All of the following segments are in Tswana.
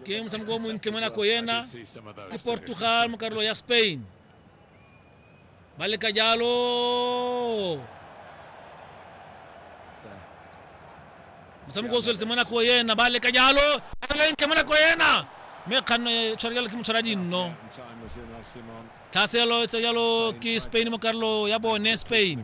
ke motshameko o montle mo nako ena ke portugal mo karolo ya spain ba leka jalo motshameko o tsweletse mo nako ena ba leka jalo lentle mo nako ena mme kganno e tshware jalo ke motshwara dinno tlhaselo e tsa jalo ke spain mo karolo ya bone spain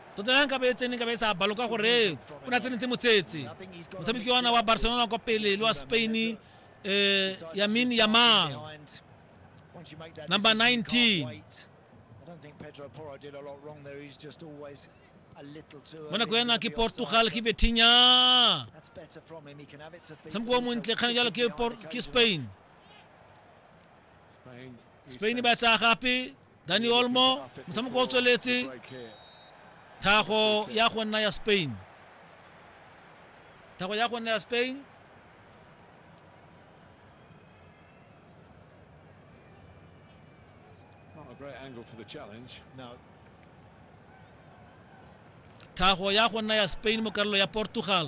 Tota ya nkabe e tsene nkabe e sa balo ka gore o ne a tsenetse motsetse motshameki ona wa barcelona kwa pele le wa spain um eh, yamin yamal number 19 mo nako yana ke portugal ke betinya tshameko o montle kgane jalo ke spain spain ba tsaya gape dani olmo motshameko o tsweletse thago ya go nna ya spain thago ya go nna ya spain great angle for the challenge. Now, thago ya go nna ya spain mo karolo ya portugal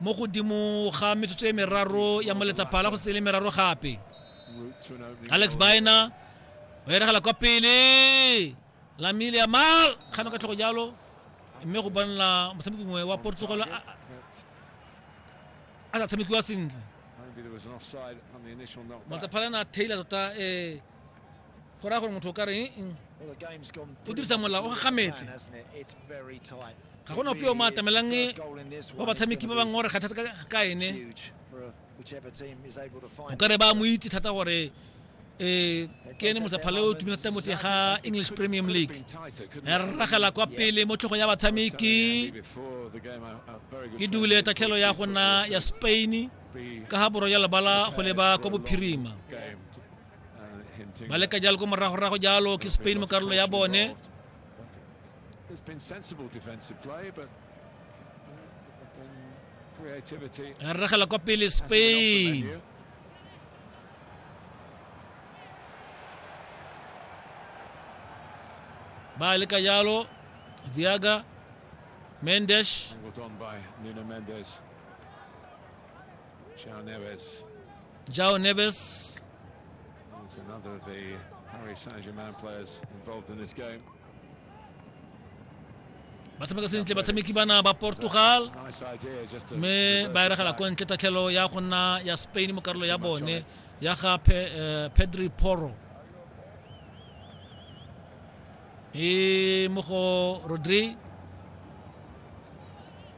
mo godimo ga metsotso e meraro ya moletsaphala go se le meraro gape alex bina o eregela kwa pele lamile ya mal kgano ka tlhogo jalo mme go bonela motshameki mongwe wa portugal a sa tshamekiwa sentle motsaphala na tailor tota um go raya gore motho o ka re eng o dirisa molao o gagametse ga gona ope o mo atamelang wa batshameki ba bangwe gore kgathata ka ene o ka re ba mo itse thata gore um ke ene motsaphala o tumile thata mote ga english premium league ya rragela kwa pele mo tlhogo ya batshameki e dule tatlhelo ya gona ya spain ka ga borwa ya lebala go leba kwa bophirima ba leka jalo ko moragorago jalo ke spain mo karolo ya bone re regela kwa pele spain ba leka jalo viaga mendes Chao Neves. João Neves. It's another of the Paris Saint-Germain players involved in this game. ba tshameka sentle batshameki bana ba portugal mme ba eregela ko ntle tatlhelo ya go nna ya spain mo karolo ya bone ya ga eh, pedri poro e mo go rodri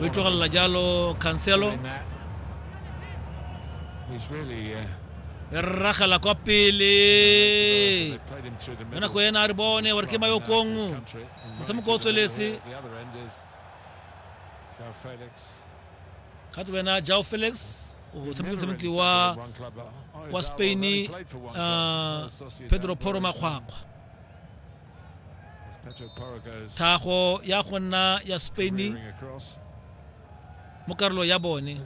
O e tlogelela jalo Cancelo. Re ragela kwa pele. Ka nako ena a re bone gore ke mayokong. Motshameko o tsweletse. Kgato wena Jao Felix o tshameka motshameki wa wa Spain uh, Pedro Poro Makgwakgwa thago ya go nna ya spain mo karolo ya bone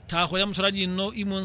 thago ya motshwara dinno imon